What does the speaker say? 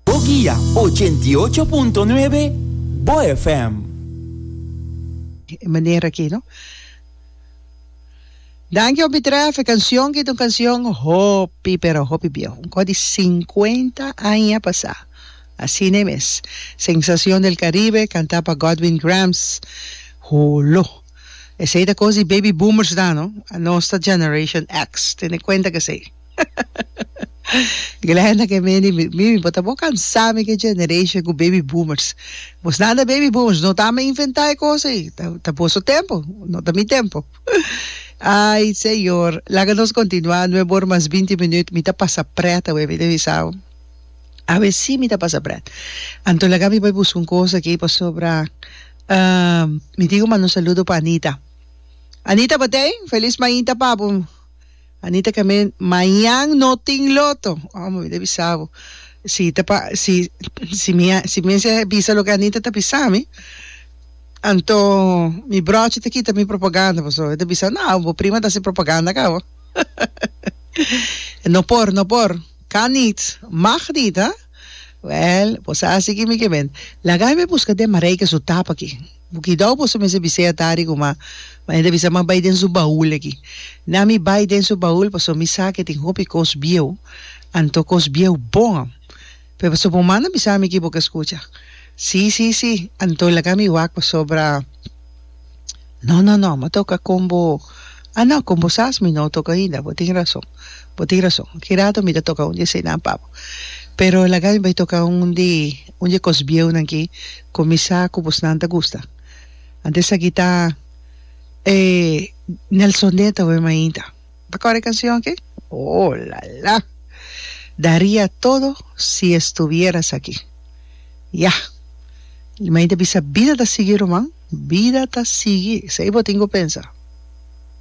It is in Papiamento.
Bo guia ochenta i ocho punto nuebe Bo FM. E manera aki no. Danki hopi tref e cancion ki ta un cancion hopi pero hopi bieho un cosa di cincuenta aña pasa asina e mes sensacion del caribe canta pa Godwin Grams holo esey ta cos di baby boomers dan no nos ta generation X tene cuenta cu esey. Glenda ke meni mimi bo ta bo kansa mi ke generation ku baby boomers bos nan ta baby boomers no ta mi inventa e kos ei ta boso tempo no ta mi tempo ai señor laga nos kontinua nueve ora mas binti minut mi ta pasa pret awe mi ta bisa awe si mi ta pasa pret anto laga mi bai buska un kos aki pasobra mi tin ku manda un saludo pa Anita Anita batey felis mainta papu Anita Cament, Mañan no tin loto. Oh, mi ta bisa bo. Si ta pa, si, si mi a, si mester a bisa loke Anita ta bisa mi, anto mi brochi ta kita mi propaganda. Paso e ta bisa, No, bo prima ta hasi propaganda ka bo. No por, no por. Kan nit. Mag nit, ha? Wèl, bo sa hasi aki mi Cament. Laga mi buska den Marijke su tap aki. Bo kidao boso mester bisei atari kuma Maria ta bisa, M'a bai den su baul aki. Na mi bai den su baul pasobra mi sa ku e tin hopi kos bieu, anto kos bieu bon. Pero pasobra bo manda bisa mi aki bo ke skucha. Sí, sí, sí, anto laga mi wak pasobra No, no, no, m'a toka kon bo. Ah, no, kon bo sas mi no toka ainda. Bo tin rason, bo tin rason. Ki rato mi ta toka un di eseinan pa bo. Pero laga mi bai toka un di Un dje kos bieunan ki kuminsá ku bosnan ta gusta. Antes aki ta e Nelson Dent ta wen mainta. Ta kòrda e kansion ki? Oh, la la! Daría todo si estuvieras aquí. Ya! Li mainta bisa, Bida ta sigui, Ruman, bida ta sigui. Esei bo tin ku pensa.